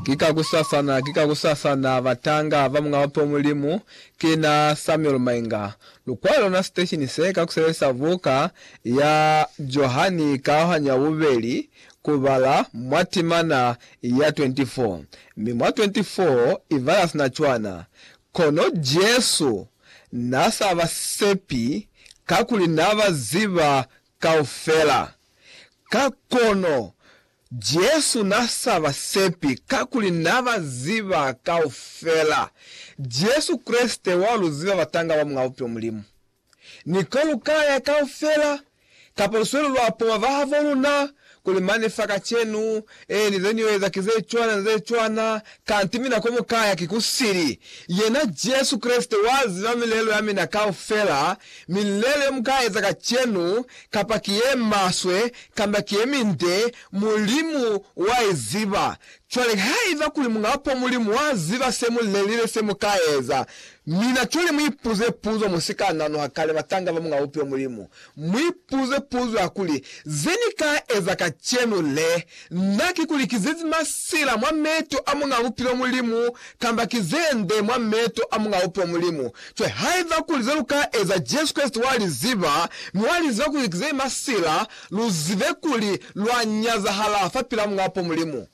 Ki ka kusasana, ki ka kusasana, batanga ba Muñ'a Bape Mulimu, ki na Samuel Mainga. Lukwalo lona siteshini se ka kusebelisa buka ya Johani Kaohanyo ya Bubeli ku bala mwa timana ya 24, mi mwa 24 i bala sina cwana. Kono Jesu na sa ba sepi kakuli na ba ziba kaufela. Ka kono, Jesu n'a sa ba sepi kakuli n'a ba ziba kaufela. Jesu Kreste wa lu ziba batanga ba Mulao Bupilo Mulimu. Ni ko lu ka ya kaufela, kapa lusweli lwa poma bahaboluna, Kuli mane fa kacenu, eeni zeniyoeza ki zecwana ni zecwana, kanti mina komukaya ki kusili. Yena Jesu Kreste waziba milelo yamina kaufela, milelo yomukaeza kacenu, kapa ki yemaswe kamba ki yeminde, Mulimu waiziba. Cwale haiba kuli Muñapo Mulimu waziba semulelile semukaeza, mina cwale muipuze puzo musika nanuha kale batanga bamuñaupi wa Mulimu, Mu ipuze puzo ya kuli, Ze ni ka eza kacenu le nda ki ku likizezi masila mwa meto a Muñ'a Bupilo Mulimu, kamba ki ze nde mwa meto a Muñ'a Bupilo Mulimu? Cwale, haiba kuli ze lu ka eza Jesu Kreste wa li ziba, mi wa li ziba ku likizezi masila, lu zibe kuli lwa nyazahala fapil'a Muñ'a Bupilo Mulimu.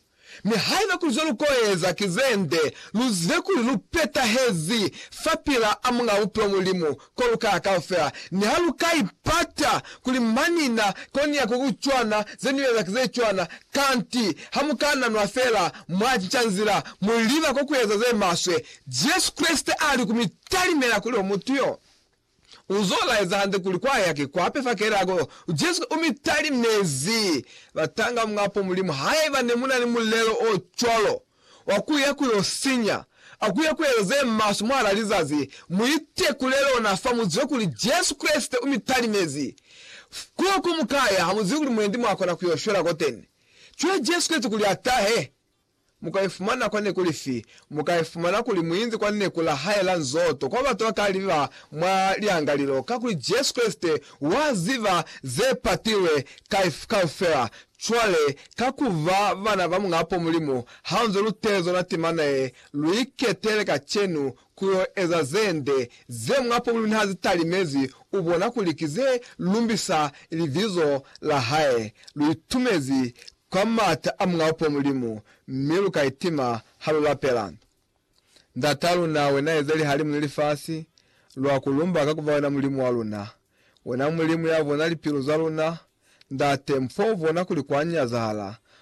Mi haiba kuli zelukoeza ki zende, luzibe kuli lupetahezi fapila a Muñaa Bupilo Mulimu kolukaya kaufela. Niha lukaipata kuli manina koniya kukucwana, zenieza ki zecwana, kanti hamukananwa feela mwacinca nzila, muliba kokueza zemaswe. Jesu Kreste aali kumitalimela kuli omutu yo U zo laeza hande kuli kwa yake kwa pepa kelako Jesu u mi talimezi batanga mwapo Mulimu haiba ne mu na ni mulelo o cwalo wa ku ya ku yo sinya a ku ya ku eza ze maswe mwahal'a lizazi. Mu itekule lona fa mu zibe kuli Jesu Kreste u mi talimezi. Kuba ku mu kaya ha mu zibi kuli mwendi mwa kona ku yo shwela koteni cwale Jesu Kreste kuli a tahe. Mu ka ifumana kwa neku lifi? Mu ka ifumana kuli mu inzi kwa neku la hae la nzoto, kwa batu ba ka li ba mwa liangalilo, kakuli Jesu Kreste wa ziba ze patilwe kaufela. Cwale, ka ku ba bana ba Muñapo Mulimu, ha nzo lu teli zona timana ye lu iketele kacenu ku yo eza ze nde, ze Muñapo Mulimu niha zi talimezi, u bona kuli ki ze lumbisa Libizo la hae. Lu itumezi kwa m'ata a Mulao po Mulimu, mi lu ka itima ha lu lapela, Ndat'a luna, wena eza lihalimu ni lifasi, lwa ku lumba ka ku ba wena Mulimu wa luna, wena Mulimu ya bona lipilu za luna, Ndate, m'f'o bona kuli kwa nyazahala,